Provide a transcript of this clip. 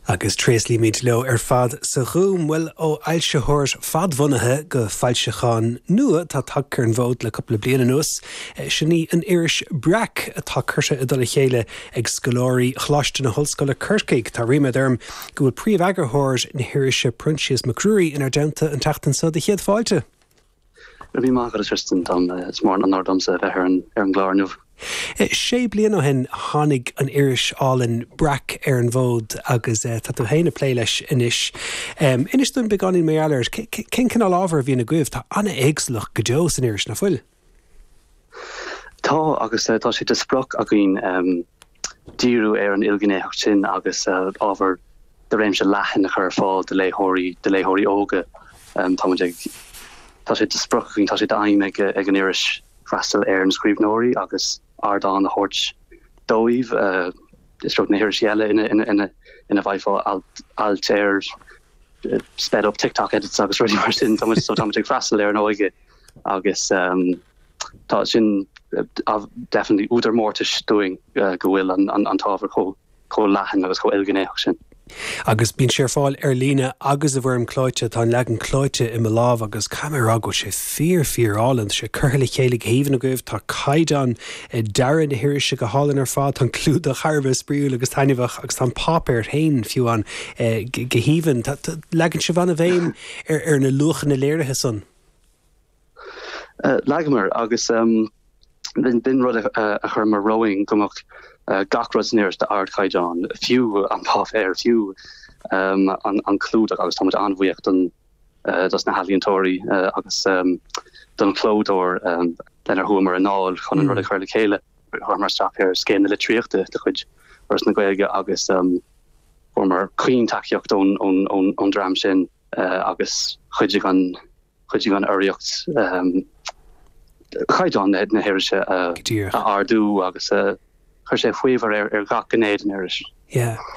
Agus tréaslaímid leo ar fad sa Ghúm. Bhuel, ó fhoilsitheoir fadbhunaithe go foilseachán nua atá tagtha ar an bhfód le cúpla bliain anuas, sin í an iris Breac, atá curtha i dtoll a chéile ag scoláirí Choláiste na hOllscoile Corcaigh. Tá ríméad orm go bhfuil príomheagarthóir na hirise, Proinsias Mac Ruairí, inár dteannta an tseachtain seo. Do chéad fáilte. Go raibh míle maith agat, a Tristan. Domsa, is mór an onóir domsa a bheith ar an gclár inniu. Sé bliana ó shin a tháinig an iris álainn Breac ar an bhfód agus tá tú féin ag plé leis anois. Inis dúinn beagáinín mar gheall air. Cén cineál ábhair a bhíonn agaibh? Tá an-éagsúlacht go deo san iris, nach bhfuil? Tá, agus tá sé de sprioc againn díriú ar an ilghnéitheacht sin agus ábhar de réimse leathan a chur ar fáil do léitheoirí, do léitheoirí óga. Táimid ag. Tá sé de sprioc againn, tá sé d'aidhm ag an iris freastal ar na scríbhneoirí agus ardán a thabhairt dóibh. Is tearc na hirisí Gaeilge ina bhfaighfeá ailt ar sped up TikTok edits agus rudaí mar sin. Táimid ag freastal ar an óige agus. Tá sin definitely údar mórtais dúinn go bhfuil an t-ábhar chomh chomh leathan agus chomh ilghnéitheach sin. Agus bíonn sé ar fáil ar líne agus i bhfoirm clóite, tá an leagan clóite i mo lámh agus caithfidh mé a rá go bhfuil sé fíor fíor álainn, tá sé curtha le chéile go haoibhinn agaibh, tá caighdeán dearadh na hirise go hálainn ar fad, tá an clúdach thar a bheith spraíúil agus taitneamhach agus tá an páipéar féin fiú ann go haoibhinn. Leagann sibh an-bhéim ar na luachanna léirithe sin. Leagamar agus b'in rud a chuireamar romhainn go mbeadh gach rud san iris d'ardchaighdeán, fiú an páipéar, fiú an clúdach agus táimid an-bhuíoch dos na healaíontóirí agus don chlódóir lenar chuamar i ndáil chun an rud a chur le chéile. Chuamar isteach ar Scéim na Litríochta de chuid Fhoras na Gaeilge agus fuaireamar caoin tacaíocht ón dream sin agus chuidigh an Chuidigh an urraíocht caighdeán na hirise a ardú agus chuir sé faobhar ar gach gné den iris.